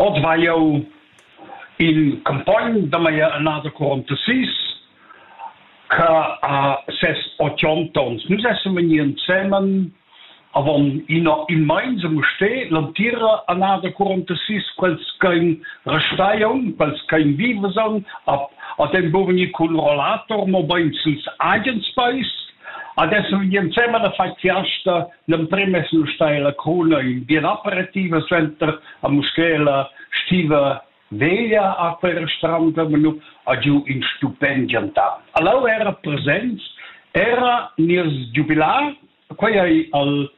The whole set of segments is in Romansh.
Oz vai jau il cumpogn da mia annada quarantasis che ha ses otganta onns. Nus essan vegnì ensemen avon ina in meins a Mustér l'entira annada quarantasis quels ch'ein restai aunc, quels ch'ein vivas aunc, ad ein buca vegnì cun rollator, mobein sils agens peis. Ad essan vegnì ensemen a far fiasta L'emprim es l'ustaina La Cruna ün bien aperitiv suenter a Muschela stiva veglia a Perstranda, ma nu ha giù ün stupend giantà. Allour era presents era nies giubilar, quei ei al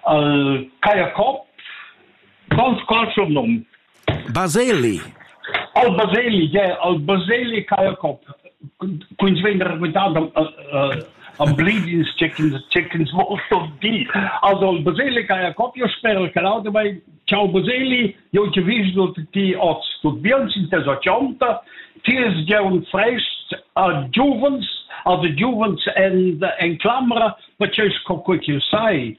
al Kaya Cop, con col suo num Baseli. Al Baseli, yeah, al Baseli Kayakov. Quins vegn raquintat am bleedings chickens, chickens molto di. Also al Baseli Kayakov, io spero che l'auto vai, ciao Baseli, io ti viso ti oz, tu bien sin tes occionta, ti es già un fresh a giovens, a the giovens and en clamra, perché sco quel che sai,